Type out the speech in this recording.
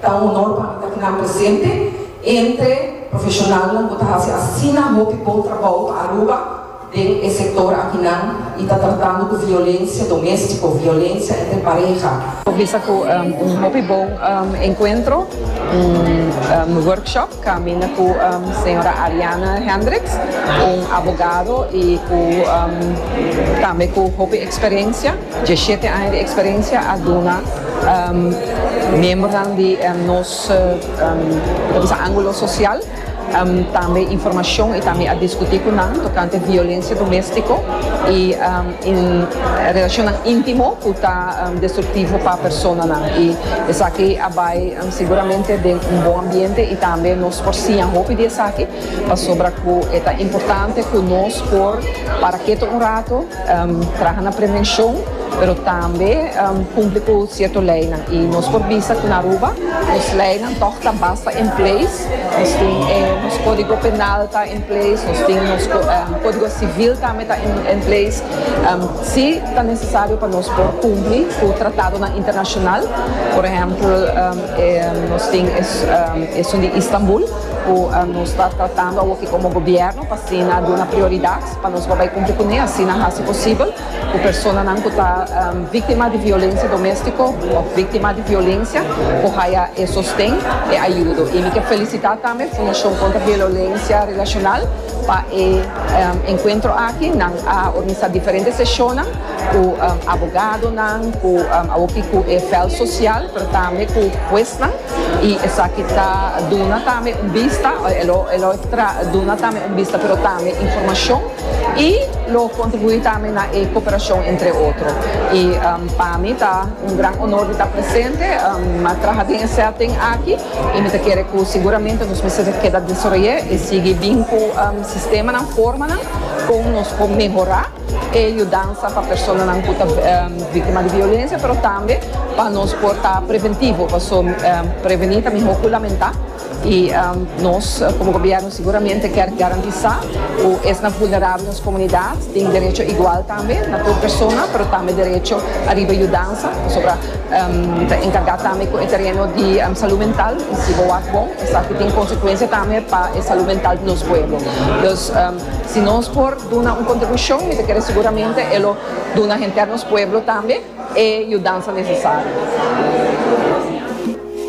Ta un honor pa mi ta knan presente entre profesionalnan cu ta haci asina hopi bon trabou pa Aruba den e sector akinan y ta tratando cu violencia domestico, violencia entre pareha. Bisa cu un hopi bon encuentro, un workshop. Caminda cu señora Ariana Hendricks, un abogado y cu tambe cu hopi experiencia, diecisiete aña di experiencia, a duna miembernan di nos angulo social tambe informacion y tambe a discuti cu nan tocante violencia domestico y relacionnan intimo cu ta destructivo pa personanan y esaki a bay Siguramente den un bon ambiente y tambe nos por siña hopi di esaki pasobra cu e ta importante cu nos por para keto un rato, traha na prevencion pero tambe cumpli cu cierto leynan y nos por bisa cu na Aruba nos leynan tog ta basta in place, nos tin e nos codigo penal ta in place, nos tin nos codigo civil tambe ta in place. Si ta nesesario pa nos por kumpli ku tratadonan internashonal, por ehèmpel e nos tin esun di Istanbul ku nos ta tratando awor ki komo gobièrnu pa asina duna prioridat pa nos por bai kumpli kuné, asina hasi posibel ku personanan ku ta víktima di violensia doméstiko òf víktima di violensia por haya e sosten, e ayudo. I mi ke felisitá tambe Fundashon Kontra Violensia Relashonal. Pa e enkuentro aki nan a organisá diferente seshonnan ku abogadonan, ku awopi ku e vèlt sosial, pero tambe ku huesnan i esaki ta duna tambe un bista, e lo e lo tra duna tambe un bista pero tambe informashon i lo kontribuí tambe na e koperashon entre otro. I pa mi ta un gran onor di ta presente, a traha den e sèting aki. y mi ta kere cu seguramente nos mester ta keda desaroy'é y sigui bin cu sistemanan, formanan con nos por mehora e yudansa pa personanan cu ta victima di violencia pero tambe pa nos por ta preventivo paso preveni ta miho cu lamenta y nos como gobierno seguramente kier garantisa cu esnan vulnerabel den nos comunidad tin derecho igual tambe na tur persona pero tambe derecho ariba yudansa pasobra Bo ta enkargá tambe ku e tereno di salú mental i si bo wak bon esaki ta tin konsekuensia tambe pa e salú mental di nos pueblo. Dus si nos por duna un kontribushon mi ta kere seguramente e lo duna henter nos pueblo tambe e yudansa nesesario.